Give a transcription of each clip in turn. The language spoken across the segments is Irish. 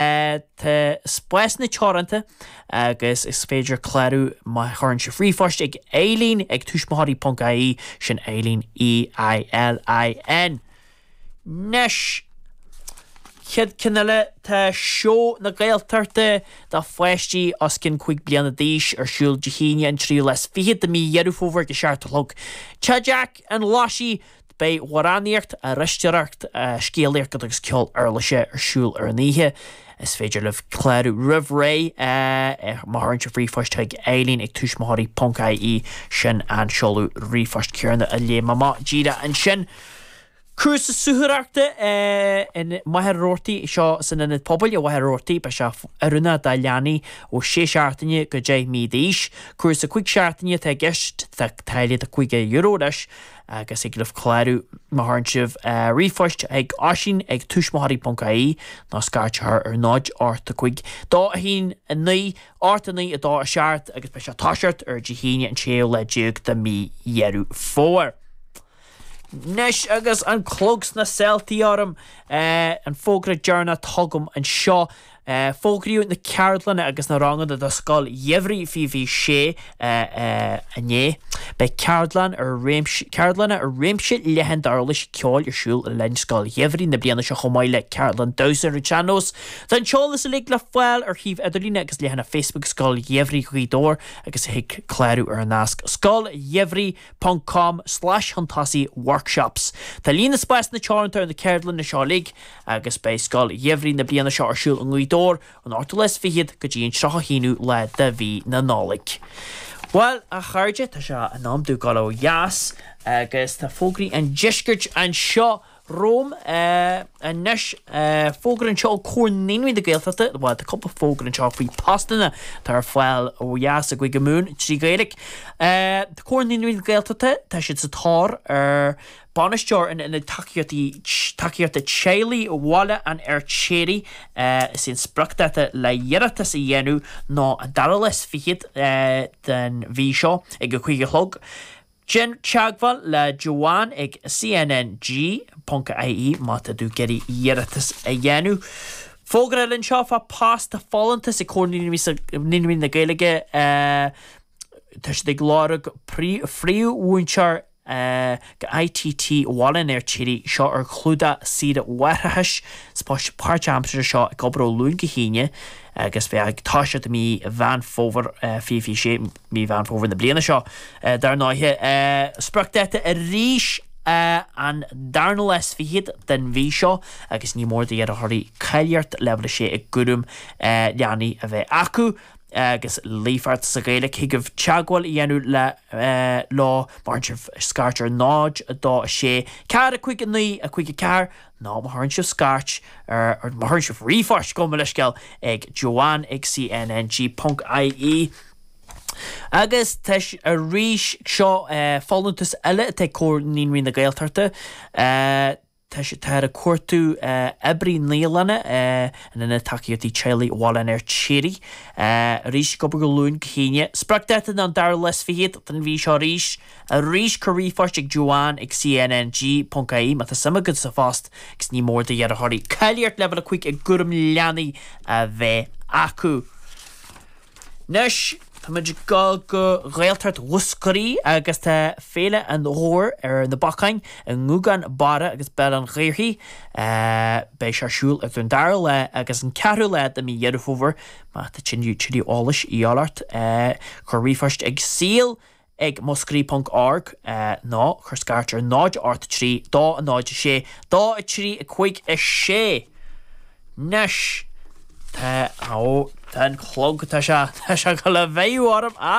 Tá spásanna teoranta agus is féidir clárú má chuireann sibh ríomhphost chuig Éilín ag tuismitheoirí.ie, sin Éilín E-I-L-I-N. Anois, chéad cheann eile, tá Seó na Gaeltachta do pháistí os cionn 5 bliana d'aois ar siúl Dé hAoine an 3ú lá is 20 de mí Dheireadh Fómhair ag a seacht a chlog. Tá teach an Leasa, Beidh amhránaíocht, aithriseoireacht, Scéalaíocht agus Ceol Uirlise ar siúl ar an oíche. Is féidir libh clárú roimh ré má chuireann sibh ríomhphost chuig Éilín ag tuismitheoirí ponc ie Sin an seoladh ríomhphoist céanna a léigh mé amach díreach ansin. Cúrsa Suathaireachta i Machaire Rabhartaigh seo san Ionad Pobail i Machaire Rabhartaigh. Beidh sé oiriúnach do leanaí ó 6 seachtaine go 10 mí d'aois. Cúrsa 5 seachtaine atá i gceist. Tá táille de €50 leis. agus thig libh clárú má chuireann sibh ríomhphost chuig Oisín ag tuismitheoirí.ie nó scairteadh air ar 0 8 5 2 1 9 8 9 2 7 agus beidh sé ag toiseacht ar Dé hAoine an séú lá déag de mhí Dheireadh Fómhair. Anois agus an clog sna sála orm, an fógra deireanach atá agam anseo. Fógraíodh na ceardlanna agus na ranganna do Scoil Gheimhridh fiche fiche sé inné. Beidh ceardlanna ar réimse leathan d'uirlisí ceoil ar siúl le linn Scoil Gheimhridh na bliana seo chomh maith le ceardlann damhsa ar an tsean-nós. Tá an t-eolas uilig le fáil ar shuíomh idirlíne agus leathanach Facebook Scoil Gheimhridh Ghaoth Dobhair agus thig clárú ar an nasc scoilgheimhridh.com/shuntossy-workshops. Tá líon na spásanna teoranta ar na ceardlanna seo uilig agus beidh Scoil Gheimhridh na bliana seo ar siúl i nGaoth Dobhair ón 28ú go dtí an 31ú lá de mhí na Nollag. Bhuel, a chairde, tá sé in am dúinn dul ó dheas agus tá fógraí an deiscirt anseo romham anois. Fógra anseo ó Chomhar Naíonraí na Gaeltachta, bhuel, tá cúpla fógra anseo faoi phostanna atá ar fáil ó dheas i gCúige Mumhan trí Ghaeilge. Tá Comhar Naíonraí na Gaeltachta, tá siad sa tóir ar Bainisteoir in Ionad Tacaíochta Teaghlaigh Bhaile an Fheirtéaraigh Is é an spriocdháta le hiarratas a dhéanamh ná an dara lá is fichead den mhí seo ag a cúig a chlog. Déan teagmháil le Joanne ag cnng.ie má tá tú ag iarraidh iarratas a dhéanamh. Fógra eile anseo faoi phost Tá folúntas ag Comhar Naíonraí na Gaeilge Tá siad ag lorg príomh-mhúinteoir. Ag ITT Bhaile an Fheirtéaraigh seo ar chlúdach saoire mháithreachais is post páirt-aimseartha seo ag obair ó Luan go hAoine agus beidh ag toiseacht i mí Mheán Fómhair, 2026 mí Mheán Fómhair na bliana seo dar ndóigh. Spriocdháta arís an darna lá is fichead den mhí seo agus ní mór d'iarrthóirí cáilíocht leibhéal 6 i gCúram Leanaí a bheith acu. agus líofacht sa Ghaeilic thig libh teagmháil a dhéanamh le leo má chuireann sibh scairt ar 0, 2, 6, 4, 5, 9, 5, 4 nó má chuireann sibh scairt ar nó má chuireann sibh ríomhphost chuig, mo leithscéal, ag Joanne ag CNNG ponc IE. Agus tá arís seo folúntas eile atá ag Comhar Naíonraí na Gaeltachta. Tá sé táthar ag cuartú oibrí naíolainne in Ionad Tacaíochta Teaghlaigh Bhaile an Fheirtéaraigh arís ag obair ó Luan go hAoine. Spriocdháta ná an dara lá is fichead den mhí seo arís. Arís, cuir ríomhphost chuig Joanne ag cnng.ie má tá suim agat sa phost agus ní mór do d'iarrthóirí cáilíocht leibhéal 5 i gCúram Leanaí a bheith acu. Anois táimid ag dul go Gaeltacht Mhúscraí agus tá Féile an Ghabhair ar na bacáin i nGúgán Barra agus Béal Átha an Ghaorthaidh. Beidh sé ar siúl idir an 2ú lá agus an 4ú lá de mhí Dheireadh Fómhair. Má tá tuilleadh eolais a dhíth ort cuir ríomhphost ag saol ag Muscraí ponc org nó cuir scairt ar 0 8 3 2 0 6 2 3 5 6 'nois tá ó tá an clog tá sé tá sé ag gabháil a bheith orm a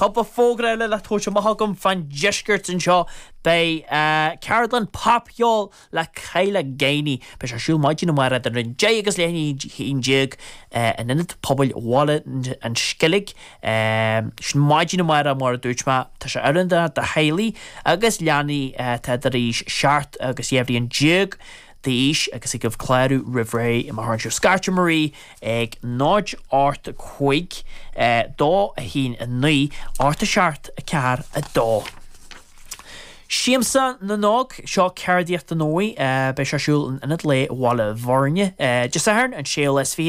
cúpla fógra eile le tabhairt amach agam fán deisceart anseo beidh ceardlann popcheoil le Kyla Gainey. Beidh sé ar siúl maidin amárach idir 10 agus leath i ndiaidh a haon déag in Ionad Pobail Bhaile an Sceilg. Sin maidin amárach mar a dúirt mé. Tá sé oiriúnach do theaghlaigh agus leanaí atá idir aois seacht agus dhá bhliain déag d'aois agus thig libh clárú roimh ré má chuireann sibh scairt ar Marie ag 0 8 5 2 1 9 8 7 4 2. Siamsa na nÓg, Seo ceardaíocht don óige. Beidh sé ar siúl in Ionad Lae Bhaile Bhuirne Dé Sathairn an 26ú